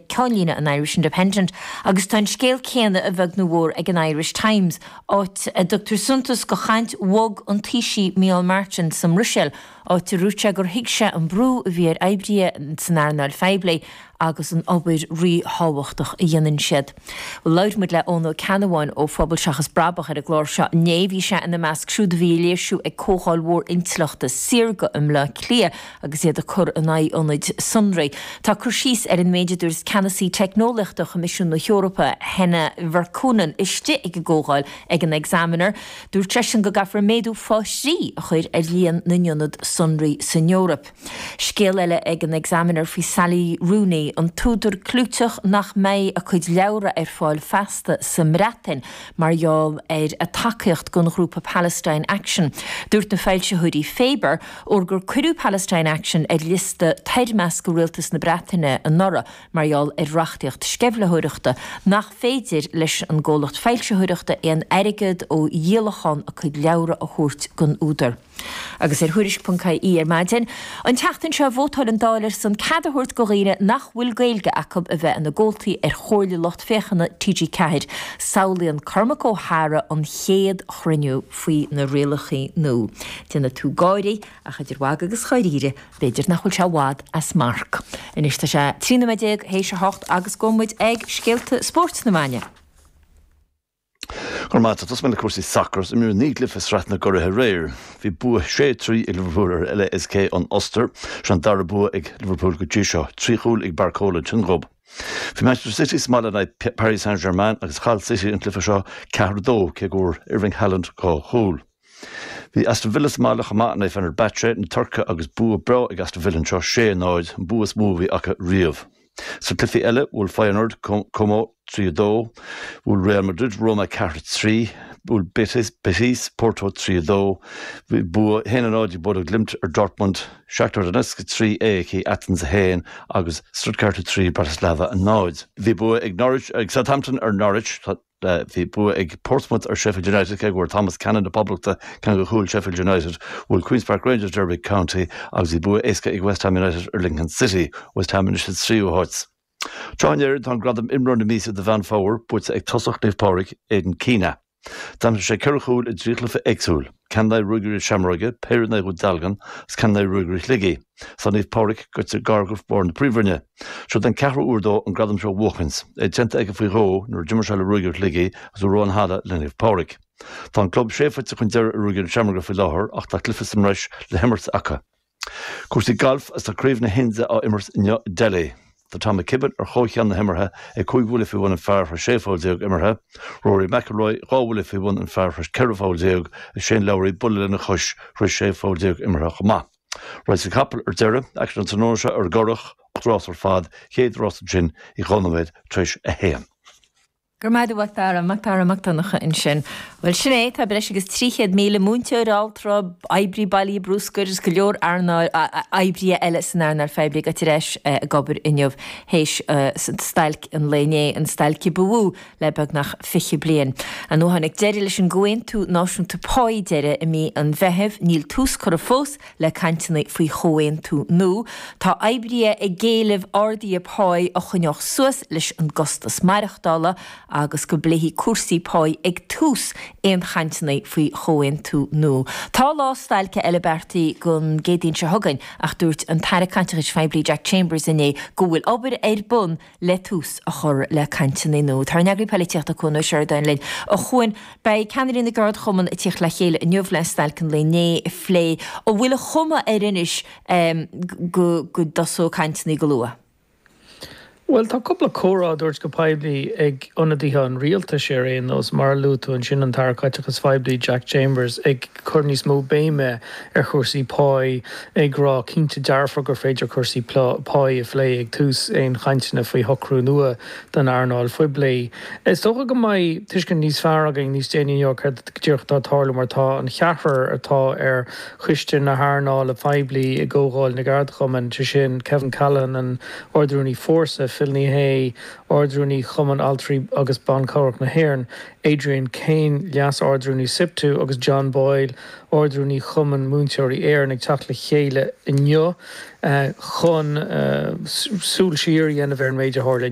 ceannlíne an Irish Independent agus tá an scéal céanna a bheag nó mhór ag an Irish Times, áit a dtugtar suntas go chaint bhog an Taoisigh Micheál Martin sa mBruiséil, áit a dúirt sé gur thuig sé an brú a bhí ar oibrithe san earnáil phoiblí agus an obair ríthábhachtach a dhéanann siad. Bhuel, labhair muid le Eoghan Ó Ceannabháin ó Phobal Seachas Brabach ar an gclár seo inné. Bhí sé ina measc siúd a bhí ag léirsiú ag comhdháil mhór intleachta saorga i mBleá Cliath agus iad ag cur in aghaidh ionaid sonraí. Tá cur síos ar an méid a dúirt Ceannasaí Teicneolaíochta Choimisiún na hEorpa, Henna Virkkunen, istigh ag an gcomhdháil ag an Examiner. Dúirt seisean go gcaithfear méadú faoi thrí a chur ar líon na n-ionad sonraí san Eoraip. Scéal eile ag an Examiner faoi Sally Rooney, an t-údar clúiteach nach mbeidh a cuid leabhra ar fáil feasta sa mBreatain mar gheall ar a tacaíocht don ghrúpa Palestine Action. Dúirt na foilsitheoirí Faber, Óir gur cuireadh Palestine Action ar liosta toirmiscthe Rialtas na Breataine anuraidh mar gheall ar reachtaíocht sceimhlitheoireachta, nach féidir leis an gcomhlacht foilsitheoireachta aon airgead ó dhíolachán a cuid leabhra a thabhairt don údar? Agus ar Thuairisc.ie ar maidin an tseachtain seo vótáil an Dáil ar son cead a thabhairt go dhaoine nach bhfuil Gaeilge acu a bheith ina gcomhaltaí ar Chomhairle Lucht Féachana TG4. Samhlaíonn Cormac Ó hEadhra an chéad chruinniú. faoi na rialacha nua. Déanfaidh tú gáire, ach idir mhagadh agus dháiríre, b'fhéidir nach bhfuil sé i bhfad as marc. Anois tá sé trí nóiméad déag théis a hocht agus gabhfaidh muid ag scéalta spóirt na maidne. Go raibh maith agat. Tosóidh mé le cúrsaí sacair is imríodh naoi gcluiche i Sraith na gCuraithe aréir. Bhí bua sé trí ag Liverpool ar LASK ón Ostair. Seo an dara bua ag Liverpool go dtí seo, trí chúl ag Barcola Tionghob. Bhí Manchester City sa mbaile in aghaidh Paris Saint-Germain agus chaill City an cluiche seo ceathair a dó, cé go bhfuair Erling Haaland dhá chúl. Bhí Aston Villa sa mbaile chomh maith in aghaidh Fenerbahce na Tuirce agus bua breá ag Aston Villa anseo, sé, náid, an bua is mó a bhí acu riamh. Sna cluichí eile, bhuail Feyenoord Como trí, a dó, bhuail Real Madrid Roma ceathair, a trí, bhuail Betis Porto trí, a dó, bhí bua haon a náid ag Bodo Glimt ar Dortmund, Shakhtar Donetsk 3, AEK Athens 1 agus Stuttgart 3, Bratislava 0. Bhí bua ag Norwich ag Southampton ar Norwich. Bhí bua ag Portsmouth ar Sheffield United cé go bhfuair Thomas Cannon na Poblachta ceann de chúil Sheffield United. Bhuail Queens Park Rangers Derby County agus bhí bua éasca ag West Ham United ar Lincoln City. West Ham anois sa tríú háit sa. Sraith na hÉireann, tá an gradam 'Imreoir na Míosa' do Mheán Fómhair buaite ag tosach Naomh Pádraig, Aidan Keena. D'aimsigh sé ceithre chúl i dtrí chluiche éagsúil, ceann in aghaidh Ruagairí Seamróige, péire in aghaidh Dhún Dealgan agus ceann in aghaidh Ruagairí Shligigh. Tá Naomh Pádraig goite gar go bharr na Príomhroinne. Seod é an ceathrú huair dó an gradam seo a bhuachaint, é déanta aige faoi dhó nuair a d'imir sé le Ruagairí Shligigh agus uair amháin cheana le Naomh Pádraig. Tá an club sé phointe chun deiridh ar Ruagairí Seamróige faoi láthair ach tá cluiche sa mbreis le himirt acu. Cúrsaí gailf is tá Craobh na hIndia á imirt inniu i Delhi. Tá Tom McKibbin ar chomhcheann na himeartha ag cúig bhuille faoi bhun an phar théis sé pholl déag imeartha, Rory McIlroy dhá bhuille faoi bhun an phar théis ceithre pholl déag is Shane Lowry buille lena chois théis sé pholl déag imeartha chomh maith. Rásaí capall ar deireadh, acu an tráthnóna seo ar an gCurrach, ocht rás ar fad, chéad rás ansin ag dhá nóiméad tar éis a haon. Go raibh maith agat a Mhac Dara, Mac Dara Mac Donncha ansin. Bhuel, sin é, tá breis agus 300,000 múinteoir, altra, oibrí bailithe bruscair agus go leor oibrithe eile san earnáil phoiblí ag dul ar ais ag obair inniu théis stailc an lae inné, an stailc a ba mhó le beagnach 20 bliain. Ón uair a tháinig deireadh leis an gComhaontú Náisiúnta Páí deiridh i mí an Mheithimh, níl tús curtha fós, le cainteanna faoi chomhaontú nua. Tá oibrithe ag éileamh arduithe páí a choinneodh suas leis an gcostas maireachtála agus go bpléifí cúrsaí páí ag tús aon chainteanna faoi chomhaontú nua. Tá lá stailce eile beartaithe don gCéadaoin seo chugainn ach dúirt an tAire Caiteachais Phoiblí Jack Chambers inné go bhfuil obair ar bun le tús a chur le cainteanna nua. Tá ár n-eagraí polaitíochta Cuan Ó Seireadáin linn. A Chuain, beidh ceannairí na gceardchumann ag tíocht le chéile inniu le stailc an lae inné a phlé. An bhfuil an chuma air anois go go dtosóidh cainteanna go luath? Bhuel, tá cúpla comhartha á dtabhairt go poiblí ag ionadaithe an rialtais ar aon nós, mar a luaigh tú ansin an tAire Caiteachais Phoiblí, Jack Chambers, ag. cur níos mó béime ar chúrsaí páí, ag rá cinnte dearfa gur féidir cúrsaí páí a phlé ag tús aon chainteanna faoi shocrú nua don earnáil phoiblí. Is dócha go mbeidh tuiscint níos fearr againn níos déanaí inniu céard go díreach atá ag tarlú mar tá an cheathrar atá ar Choiste na hEarnála Poiblí i gComhdháil na gCeardchumann, sé sin Kevin Callinan, an Ard-Rúnaí Fórsa, Phil Ní Sheaghdha, Ard-Rúnaí Chumann Altraí agus Ban Cabhrach na hÉireann, Adrian Kane, Leas-Ardrúnaí Siptu, agus John Boyle, Ardrúnaí Chumann Múinteoirí Éireann ag teacht le chéile inniu chun súil siar a dhéanamh ar an méid a tharla inné.